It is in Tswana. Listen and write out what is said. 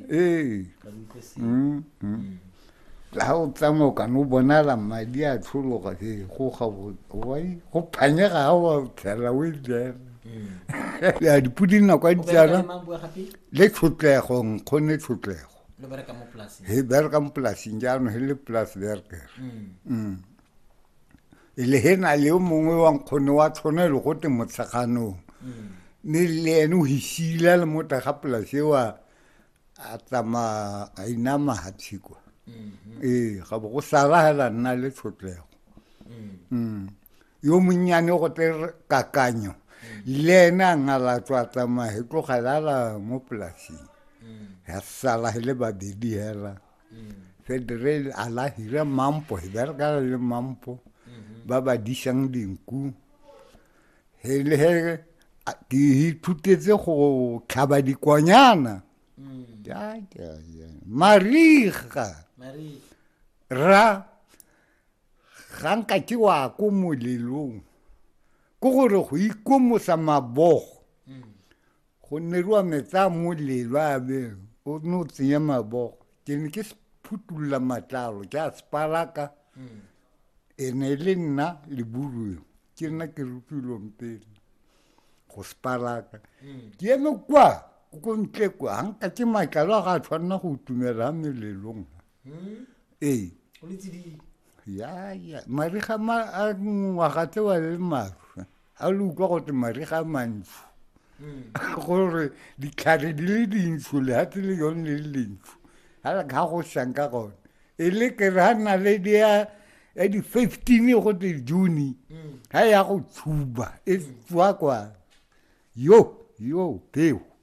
ee Mm, mm. ga o tsamaya o kana o bonala madi a tlhologa e go ga bo- wai go phanyega ga wa tlhela o e jela ya dipodi nako ya ditsala le tlhotlego nkgone tlhotlego lo bereka mo polaseng he bereka mo polasing jaanong he le polas berker Mm. e le he na le o mongwe wa nkgone wa tshwana e le go te motsheganong mm. mme le ene o hisila le mo tega polase wa a tsama a inama ha tshikwa mm-hmm. ee ga bo go sala hela nna le tshotlego mm. mm. yo monnyane go te kakanyo le ene a ngala tswa tsamaya he tlogelela mo polaseng ya sala he le babedi hela They drill a la hira mampo, he bereka le mampo. Ba ba disang dinku. He le he a- ke ithutetse go tlhaba dikonyana. Ja, ja, ja. Mariga. Ra ga nka ke wa ko molelong. Ko gore go ikomosa mabogo. Go ne rua metsa a molelo a beng o ne o tsenya mabogo ke ne ke phutolola matlalo ke a sepalaka hmm. e ne e le nna leburuo ke nna ke rupilweng pele go sepalaka hmm. ke eme kwa ko ntle kwa ga nka ke matlalo a ga a tshwanela go tumela melelong hmm? ee yaya mariga a ngwaga tse wa le maru a le utlwa gote mariga a mantsho hmm. gore ditlhare di le dintsho lehatshe le yone le le dintsho ga go sang ka gone e le ke re ga nna le di ya ya di-fifteen go te june ga ya go tshuba e tswa kwa yo yo peo